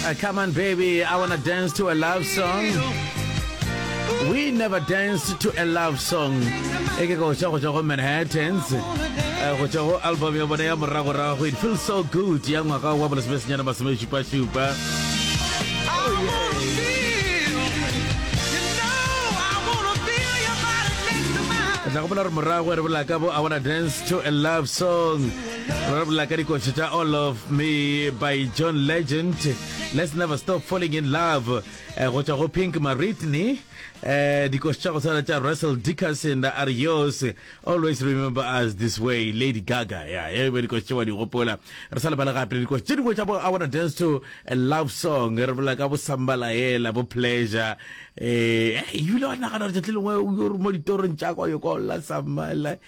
Uh, come on, baby, I wanna dance to a love song. We never danced to a love song. Eke go tšwa go tšwa go Manhattans. Uh, go tšwa go album ya bona ya moragorago. It feels so good. Ya ngwaga wa bolesemesenyana masome šupa-šupa. tla gopola gore morago re bola ka bo i wanna dance to a love song Re bolela ka dikotsi tša All of Me by John Legend, Let's Never Stop Falling in Love, eh, go tšwa go Pink Maritney, eh, dikotsi tša go tshwana tša Russell Dickerson, Arios, Always Remember Us This Way, Lady Gaga, ya, e be dikotsi tše wa di gopola. Re sa lebala gape le dikotsi tše dingwe tša bo I Wanna Dance to a Love Song, re bolela ka bo Sambalaela, bo Pleasure, eh, eh, ebile wa nagana gore tšatši lengwe o yo re mo ditorong tša kwa yo kwa o lla Sambala,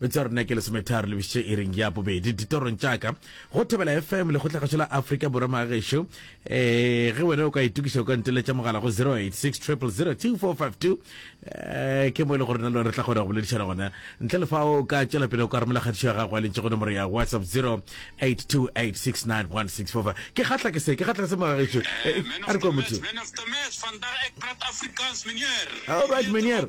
Betša rena ke lesometharo le bišitše iring ya bobedi ditorong tša ka go thebela fm lekgotlagašo la afrika borwa magagešo um eh, ge wena o ka itokiša o ka nteletša mogala go 0860002452 um eh, ke mo e le gore na le re tla kgona go boledišana gona ntle le fa o ka tšwela pele o ka romela kgatišo ya gago a lentše go nomoro ya whatsapp 0828691645 ke kgatla ke se ke kgatla ke se magagešo eh, a re kwa motho All right, Menier.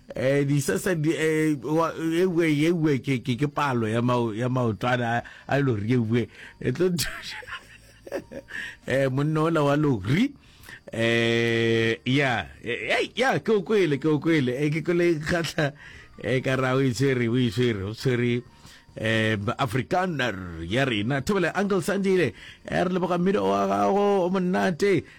Ee, disese di, ee, wa- ewe, ewe, ke, ke, ke palo ya, mao, ya maotwana a, a lori ewe. E tlo thuša. Eh, monna ola wa lori. Eh, ya, eh, ei, ya, ke o kwele, ke o kwele. Eh, ke kwele kgatla, eh, ka ra o e tshwere, o e tshwere, o tshwere, eh, Afrikaner ya rena. Thobela, Uncle Sandile, eh, re leboga mmino wa gago, o monate.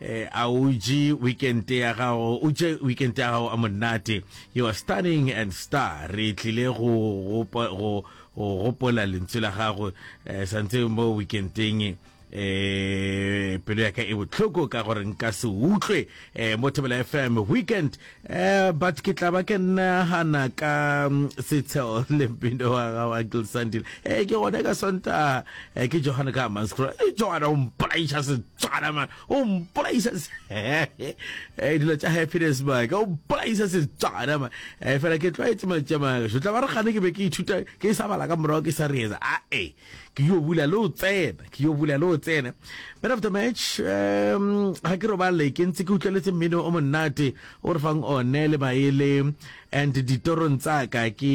A o je weekend ya gago, o je weekend ya gago a monate. You are stunning and star. Re tlile go gopa go go gopola lentswe la gago eh, santse mo weekendeng eh pelo ya ka e botlhoko ka gore nka se utlwe eh, mo Thobela FM weekend Eh, but ke tla ba ke nagana ka mm, setsheo le mpino wa ga wa gilsandile e eh, ke gone ka sonta eh, ke johane ka manscro e johane o mpolaiša setswana man o mpolaiša dilo tša happiness man o mpolaiša setswana man fela ke tlwaetse mantša magašo tla ba re gane ke be ke ithuta ke sa bala ka morago ke sa reetsa ae ke yo bula le o tsena ke yo bula le o tsena man of the match um ga ke robale ke ntse ke utlweletse mmino o monnate o re fang one le maele and ditorong tsaka ke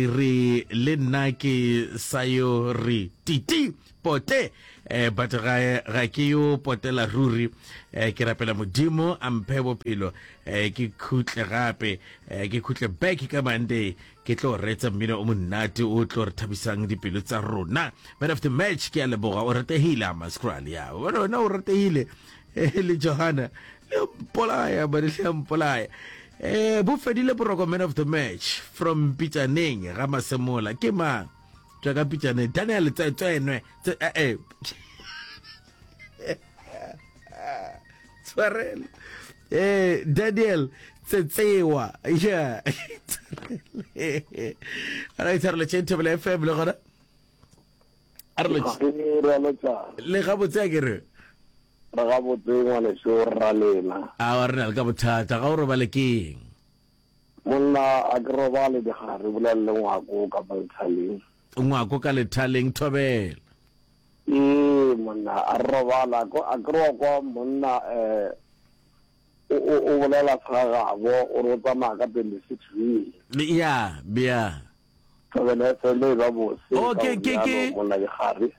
re le nna ke sa yo re titi pote eh, but ga, ga ke yo potela ruri eh, ke rapela modimo a mphe bophelo eh, ke khutle gape eh, ke khutle back ka monday ke tlo reetsa mmino o monnate o tlo re thabisang dipelo tsa rona man of the match ke a leboga o rategile a mascral ya bona wena o rategile eh, le johana le mpolaya bane le mpolaya eh bo fedile boroko man of the match from pitsaneng ga masemola ke mang tswa ka pitsaneng daniel tswenwe eh, eh. tshwarela eh daniel tsetsewa yeah ara itshwarela tšeng thobela fm le gona a re lo- le ga botse a ke re re ga botse ngwaneso rra lena a wa re na le ka bothata ga o robale ke eng monna a ke robale digare bolelele ngwako ka banthaleng Ngwako ka lethaleng, Thobela. Ee monna a re robala ko a kry kwa monna um o bolela sa gabo o re o tsamaya ka twenty six wele ya bja thobele fele e ba bose ka monna ke gare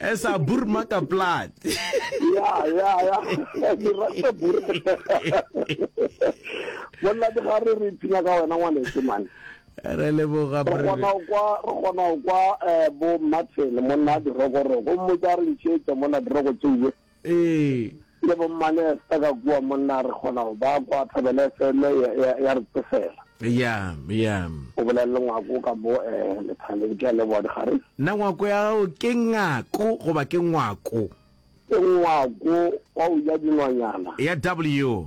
Esa burma ka plat. Ya ya ya. Ke rata bur. Bona di ga re re tsina ka wena ngwane se man. Re le bo ga bre. Bona kwa re gona kwa eh, bo Martin monna di roko roko mo tsa re ntšhetsa mona di roko tšeye. Ee. Le bo mmane sta ka kua monna a re kgona go ba kwa thobele FM ya, ya, ya re tsefela. Eya, eya. O bolela le ngwako ka mo eh, lethaleng. Ke a leboga dikgare. Na ngwako ya gago ke ngako goba ke ngwako? Ke ngwako wa go ja dinonyana. Ya W.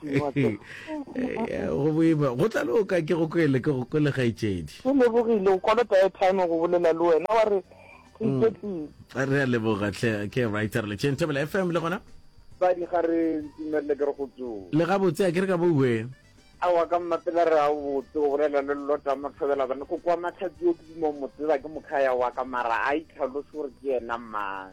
go boima go tla le o ka ke go kwele ke go kwele gaetšedi ke lebogile o kolota airtime go bolela le wena wa re re mm. iketlile re a leboga tle ke writer le tšeng thobela fm le gona badi ga re ntumelele ke re go tso le gabotse a ke re ka boue a wa ka mmapela re a botse o bolela le lota mothobela bane go kwa matlhatsi o ke dimo motseba ke mokhaya wa ka mara a itlhalose gore ke yena mang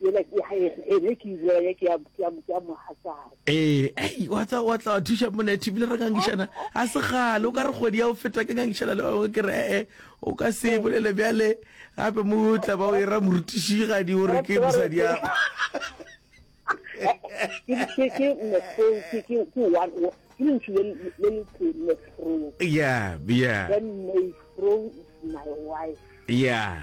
Yela ke ya eng? Ene ke ile ya ke ya ke ya ke ya mohatsana. Ee, ei, wa tsa wa tla wa thuša monethe ebile re ngangišana a se gale o ka re kgwedi ya o feta ke ngangišana le bangwe ke re ee o ka se e bolele bjale gape mo o tla ba o e ra morutišigadi o re ke mosadi ya Ke ke ke mefro ke ke ke one o- ke lentšu le le- le le tee mefro. ya ya Then Mayfro is my wife. ya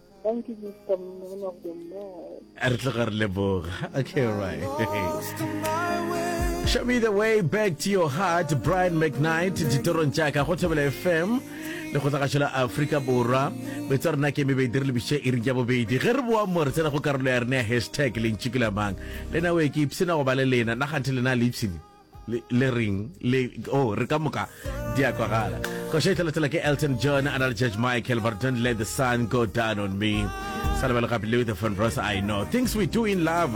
Thank you, Mr. Man of the Lord. Re tloga re leboga. Okay, all right. Show me the way back to your heart, Brian McKnight, ditorong tša ka go Thobela FM le go tlagatšo la Afrika Borwa. Betso ya rena ke eme beidi re lebiše e ring ya bobedi. Ge re boa mo re tsena go karolo ya rena ya hashtag lentši ke la mang. Le na o e ke ipsena go ba le lena. Naganthe lena le ipsene. le ring le o oh, re ka moka di a kwagala go šetlhelathela ke elton john a na le judge michael but don't let the sun go down on me sa lebelo gape leo the fon rosa i know things we do in love